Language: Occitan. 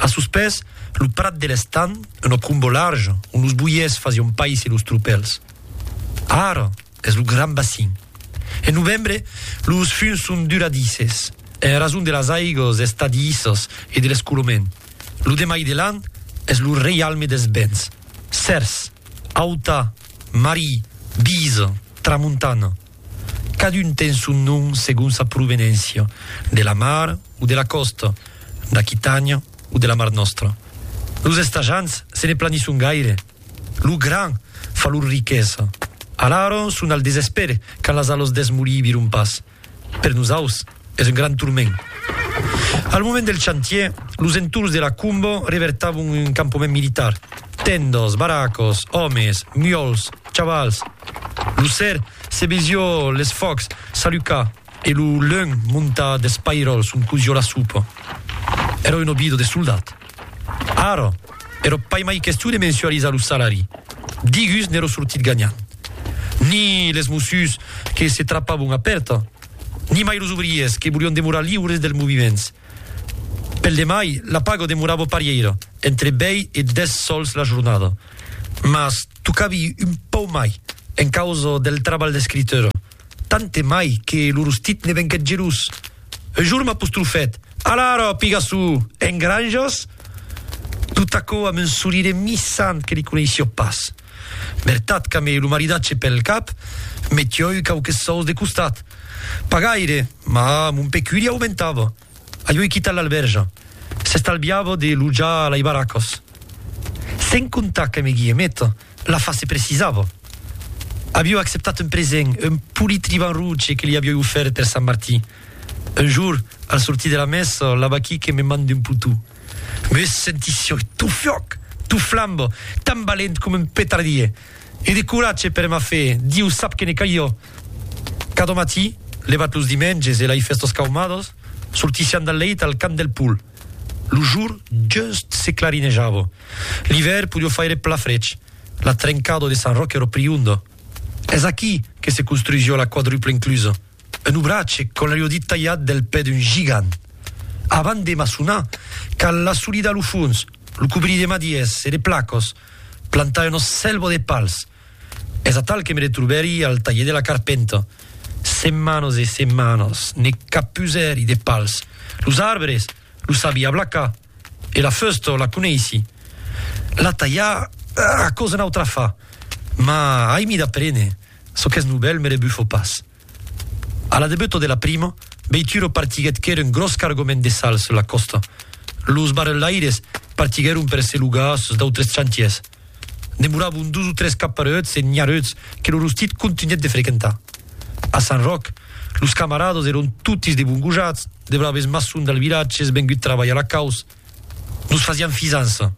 A sos pès, lo prat de l'Estang, una combo larja ont los boiers fasión pais e los tropèls. Ara es lo gran bacin. En novembre, los funs son duradisses, en rason de las aigos estadisas e de l'escolament. Lo demai de l'an es lo reialme dels vents, Cers, Auta, Marie, Bise, Tramontana. Cadun ten son nom segon sa provenéncia, de la mar o de la còsta, d'Aquitània o de la Mar Nòstra. Los estajants se ne planisson gaire. Lo gran fa lor riquesa. Alara son al desespèr quand las alos desmoliviron pas. Per nosaus, Es un gran turment. Al moment del chantier, los entorns de la comba revertabon un campoment militar, tendas, barracas, òmes, miòls, chavals. Lo ser se besió les fòcs, salucar, e lo lum montar d'espairòl son cosió la sopa. Èra una vida de soldat. Ara, èra pas mai question de mensualizar lo salari. Digus n'èra sortit ganhant. Ni les mossuts que se trapabon a pèrta. nimai los ouvriers que volion demorar liures dels moviments. Pel demai, la paga demorava parièira, entre vei e dètz sòls la jornada, mas tocavi un pauc mai en causa del trabalh d'escritura, tant e mai que lo rostit ne venguèt gelós. Un jorn m'apostrofèt, Alara, pigassó, engrànjas? Tot aquò amb un sorire missant que li coneissiá pas. Vertat qu'ame lo maridatge pel cap, metióu quauques sòus de costat. Pas gaire, mas mon peculi aumentava. Aiói quitat l'albèrja. S'estalbiava de lojar a lei barracas. Sen comptar qu'ame Guillemeta la fa se precisava. Avió acceptat un present, un politrivan rouge que li aviói ofèrt per Sant Martí. Un jour, al sortir de la messa, l'abaquí que me mand d'un potou. Me sentissi oi tot fiòc, tot flambo, tan valent com un petardier. E de coratge per ma fe, Diu sap que ne calió! Cada matí, levat los dimènges e lai fèstas caumadas, sortissián del leit al cant del pol. Lo jour just se clarinejava. L'ivèr podió faire pla frech. La trencada de Sant Roc ero priunda. Es aquí que se construisió la quadrupla inclusa. Un obrache collariodit talhat del pè d'un gigant. Avant de maçonar, cal assolidar lo fons, lo cobrir de madièrs e de placos, plantar un ossèlbo de pals. Es atal que me retrobèri al talher de la carpenta. Setmanas e setmanas ne capusèri de pals. Los arbres los sabia ablacar e la fustor la coneissi. La talhar, aquò es una autra fa, mas ai-mi d'aprene. Çò qu'es novèl me rebufo pas. A la debuta de la prima, Beituro partiguèt qu'ère un gròs cargament de sal sus la còsta. Los barrelaires partiguèron per se logar sus d'autres chantiers. Demorabon dos o tres capareuts e niareuts que lo rostit contunhèt de frequentar. A Sant Ròc, los camaradas èron totis de bon gojats, de braves maçons del vilatge es vengut trabalhar la caus. Nos fasián fisança.